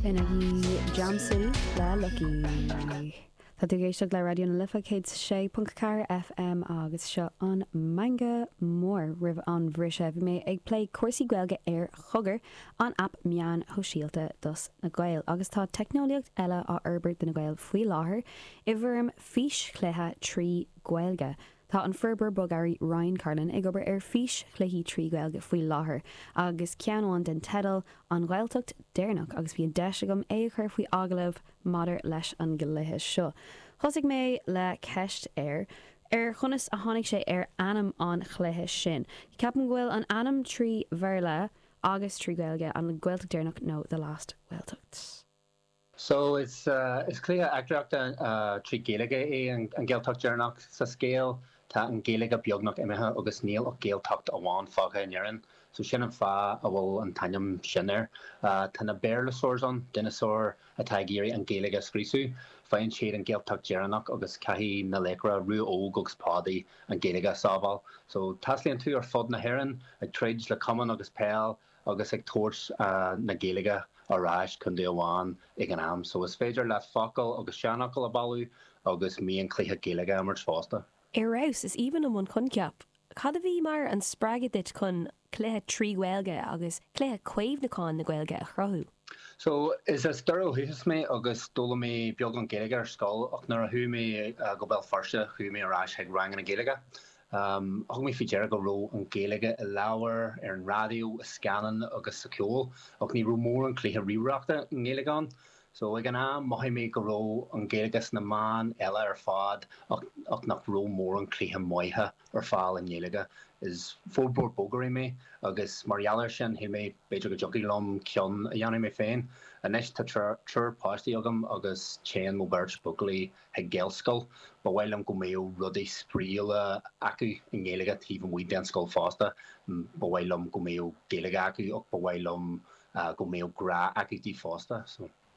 Ina dhiaidh Jam City le Lucky. Tá tú ag éisteacht le Raidió na Life 106.4 FM agus seo an Meangadh Mór. Roimh an bhriseadh bhí mé ag plé cúrsaí Gaeilge ar Chogar, an aip meán shóisialta dos na Gaeil, agus tá teicneolaíocht eile á fhorbairt do na Gaeil faoi láthair i bhfoirm físchluiche trí Ghaeilge. Tá an forbróir bogearraí Ryan Carlin ag obair ar fís-chluichí trí Ghaeilge faoi láthair agus ceann amháin den teideal An Ghaeltacht Deireanach agus bhí an deis agam é a chur faoi agallamh maidir leis an gcluiche seo. Thosaigh mé le ceist air ar chonas a tháinig sé ar ainm an chluiche sin. Ceapaim go bhfuil an ainm trí Bhéarla agus trí Ghaeilge, An Ghaeltacht Deireanach nó The Last Gaeltacht. So is is cluiche eachtraíochta trí Ghaeilge é An Ghaeltacht Deireanach. Sa scéal tá an Ghaeilge beagnach imithe agus níl ach Gaeltacht amháin fágtha in Éirinn. So sin an fáth a bhfuil an t-ainm sin air. Tá na Béarlasaurs ann, dineasáir atá ag iarraidh an Ghaeilge a scriosadh. Faigheann siad an Ghaeltacht Deireanach agus caithfidh na laochra, Rua Óg agus Pádaí, an Ghaeilge a sábháil. So taistealaíonn tú ar fud na hÉireann ag troid le camán agus peil. agus ag tabhairt na Gaeilge ar ais contae amháin ag an am so is féidir leat focail agus seanfhocail a bailiú agus mionchluichí Gaeilge a imirt fosta. Ar fheabhas! Is aoibhinn liom an coincheap. Cad a bhí mar an spreagadh duit chun cluiche trí Ghaeilge agus cluiche caomhnúcháin na Gaeilge a chruthú? So, is as Doire ó dhúchas mé agus d'fhoghlaim mé beagán Gaeilge ar scoil ach nuair a chuaigh mé go Béal Feirste chuaigh mé ar ais chuig ranganna Gaeilge Thug mé faoi deara go raibh an Ghaeilge i leabhair, ar an raidió, i scannáin agus sa cheol, ach ní raibh mórán cluiche ríomhaireachta i nGaeilge ann. So ag an am, mhothaigh mé go raibh an Ghaeilge sna meáin eile ar fad ach nach raibh mórán cluiche maithe ar fáil i nGaeilge. Is forbróir bogearraí mé agus mar gheall air sin, shíl mé b'fhéidir go dtiocfadh liom ceann a dhéanamh mé féin. Anois, tá triúr páistí agam agus téann mo bheirt buachaillí ag Gaelscoil. Ba mhaith liom go mbeadh rudaí spraíúla acu i nGaeilge taobh amuigh den scoil fosta. Ba mhaith liom go mbeadh Gaeilge acu ach ba mhaith liom go mbeadh grá acu di fosta.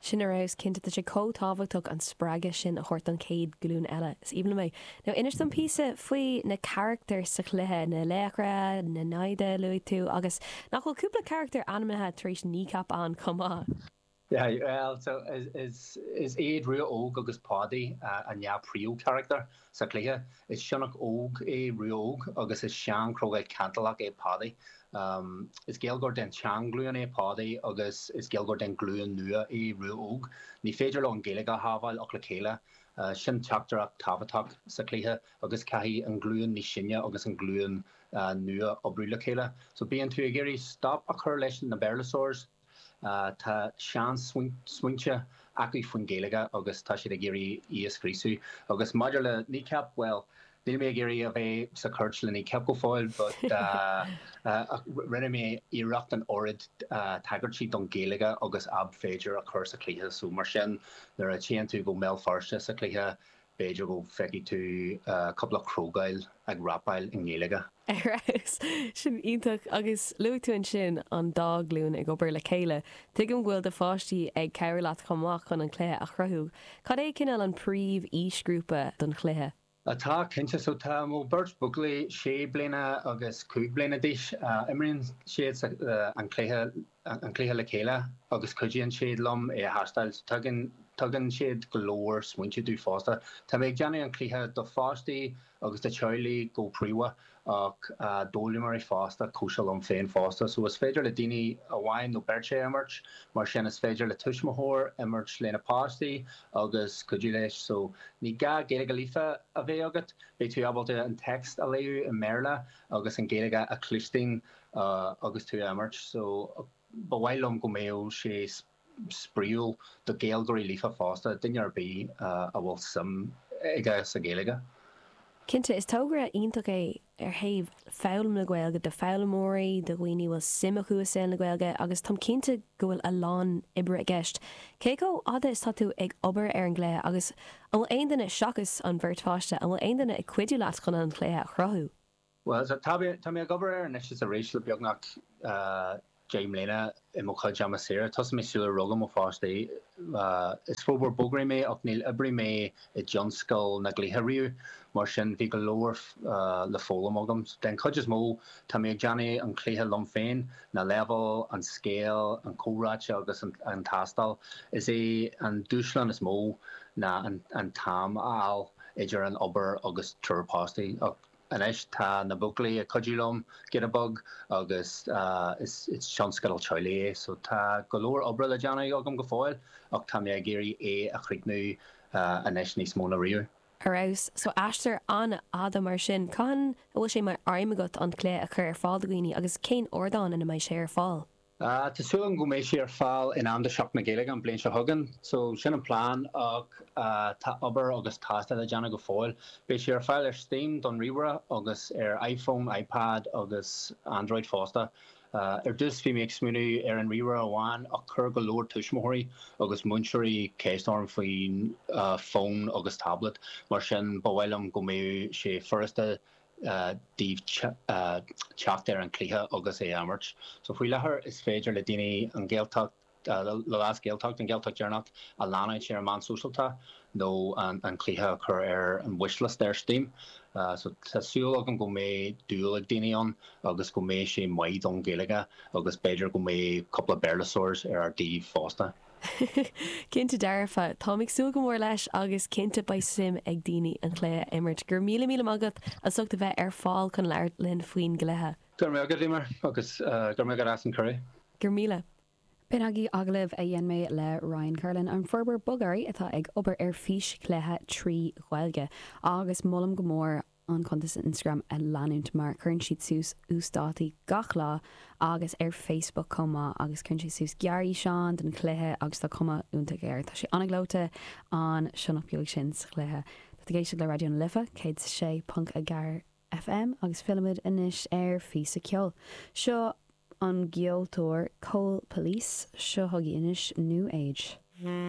Sin ar fheabhas, cinnte. Tá sé chomh tábhachtach an spreagadh sin a thabhairt don chéad ghlúin eile. Is aoibhinn liom é. Now inis dom píosa faoi na carachtair sa chluiche, na laochra, na naimhde a luaigh tú agus nach bhfuil cúpla carachtar ainmnithe tar éis Kneecap ann chomh maith? Yeah, well, so is is is iad Rua Óg agus Pádaí an dhá príomhcharactar sa chluiche. Is sionnach óg é Rua Óg agus is seanchrogall cantalach é Pádaí. Is Gaeilgeoir den tseanghlúin é Pádaí agus is Gaeilgeoir den ghlúin nua é Rua Óg. Ní féidir leo an Ghaeilge a shábháil ach le chéile. Sin teachtaireacht tábhachtach sa chluiche agus caithfidh an ghlúin níos sine agus an ghlúin nua oibriú le chéile. So bíonn tú ag iarraidh stop a chur leis na Béarlasaurs, Tá seansmaointe acu faoin Ghaeilge agus tá siad ag iarraidh í a scríosadh. Agus maidir le Kneecap, bhuel, níl mé ag iarraidh a bheith sa chúirt le Kneecap go fóill, but ach rinne mé iarracht an oiread tagairtí don Ghaeilge agus ab féidir a chur sa chluiche. So mar sin, nuair a téann tú go Béal Feirste sa chluiche, B'fhéidir go bhfeicfidh tú cúpla crogall ag rapáil i nGaeilge. Ar fheabhas! Sin iontach. Agus luaigh tú ansin an dá ghlúin ag obair le chéile. Tuigim go bhfuil do pháistí ag cabhrú leat chomh maith chun an cluiche a chruthú. Cad é cineál an príomh-aoisghrúpa don chluiche? Tá, cinnte. So tá mo bheirt bhuachaillí, sé bliana agus cúig bliana d'aois. Imríonn siad an cluiche an cluiche le chéile agus cuidíonn siad liom é a thástáil. Tugann siad go leor smaointe domh fosta. Tá mé ag déanamh an cluiche do pháistí agus do theaghlaigh go príomha ach d'fhoghlaimeoirí fosta, cosúil liom féin fosta. So is féidir le daoine amháin nó beirt é a imirt, mar sin is féidir le tuismitheoir imirt lena páistí agus cuidiú leis. So ní gá Gaeilge líofa a bheith agat, beidh tú ábalta an téacs a léamh i mBéarla agus an Ghaeilge a chluinstin. Agus tú ag imirt so, ba mhaith liom go mbeadh sé spraíúil do Gaeilgeoirí líofa fosta, duine ar bith a bhfuil suim aige sa Ghaeilge. Cinnte, is togra iontach é ó thaobh foghlaim na Gaeilge, do foghlaimeoirí, do dhaoine a bhfuil suim acu i saol na Gaeilge agus táim cinnte go bhfuil a lán oibre i gceist. Cé chomh fhada is tá tú ag obair ar an gcluiche agus an bhfuil aon duine, seachas an bheirt pháiste, an bhfuil aon duine ag cuidiú leat chun an cluiche a chruthú? Bhuel, tá mé, tá mé ag obair air anois is arís le beagnach deich mbliana i mo chuid ama saoire. Thosaigh mé sular rugadh mo pháistí. Is forbróir bogearraí mé ach níor oibrigh mé i dtionscal na gcluichí riamh, mar sin bhí go leor le foghlaim agam. Den chuid is mó, tá mé ag déanamh an chluiche liom féin, na leibhéil, an scéal, na comhráite agus an tástáil. Is é an dúshlán is mó ná an t-am a fháil idir an obair agus triúr páistí, ach Anois tá na buachaillí ag cuidiú liom, giota beag, agus is tionscadal teaghlaigh é so tá go leor oibre le déanamh agam go fóill ach tá mé ag iarraidh é a chríochnú anois níos mó ná riamh. Ar fheabhas. So aistear an-fhada mar sin. Cathain a bhfuil sé mar aidhm agat an cluiche a chur ar fáil do dhaoine agus cén ardán ina mbeidh sé ar fáil? Tá súil agam go mbeidh sé ar fáil in am do Sheachtain na Gaeilge an bhliain seo chugainn so sin an plean ach tá obair agus tástáil le déanamh go fóill. Beidh sé ar fáil ar Steam don ríomhaire agus ar iPhone, iPad agus Android fosta. Ar dtús bhí mé ag smaoineamh ar an ríomhaire amháin ach chuir go leor tuismitheoirí agus múinteoirí ceist orm faoin fón agus tablet mar sin ba mhaith liom go mbeadh sé furasta dtaobh teacht ar an chluiche agus é a imirt. So faoi láthair is féidir le daoine an Ghaeltacht, le leas Gaeltacht, an Ghaeltacht dheireanach a leanúint ar na meáin shóisialta nó an cluiche a chur ar an wishlist ar Steam. So tá súil agam go mbeidh dúil ag daoine ann agus go mbeidh sé maith don Ghaeilge agus b'fhéidir go mbeidh cúpla Béarlóirs ar ár dtaobh fosta. Cinnte dearfa. Táim ag súil go mór leis agus cinnte beidh suim ag daoine an cluiche a imirt. Go raibh míle míle maith agat as ucht a bheith ar fáil chun labhairt linn faoin gcluiche. Go raibh maith agat, Eimear, agus go raibh maith agat as an cuireadh. Go raibh míle. B'in agaibh agallamh a dhein mé le Ryan Kerlin, an forbróir bogearraí atá ag obair ar físchluiche trí Ghaeilge, agus molaim go mór an cuntas Instagram a leanúint mar cuireann siad suas uasdátaí gach lá agus ar Facebook chomh maith agus cuireann sé suas gearrfhíseáin den chluiche agus tá cuma iontach air. Tá sé an-ghleoite an sionnach beag sin sa chluiche. Tá tú ag éisteacht le Raidió na Life 106.4 FM agus fillimid anois ar phíosa ceoil. Ón gceoltóir Coal Police, seo chugaibh anois New Age.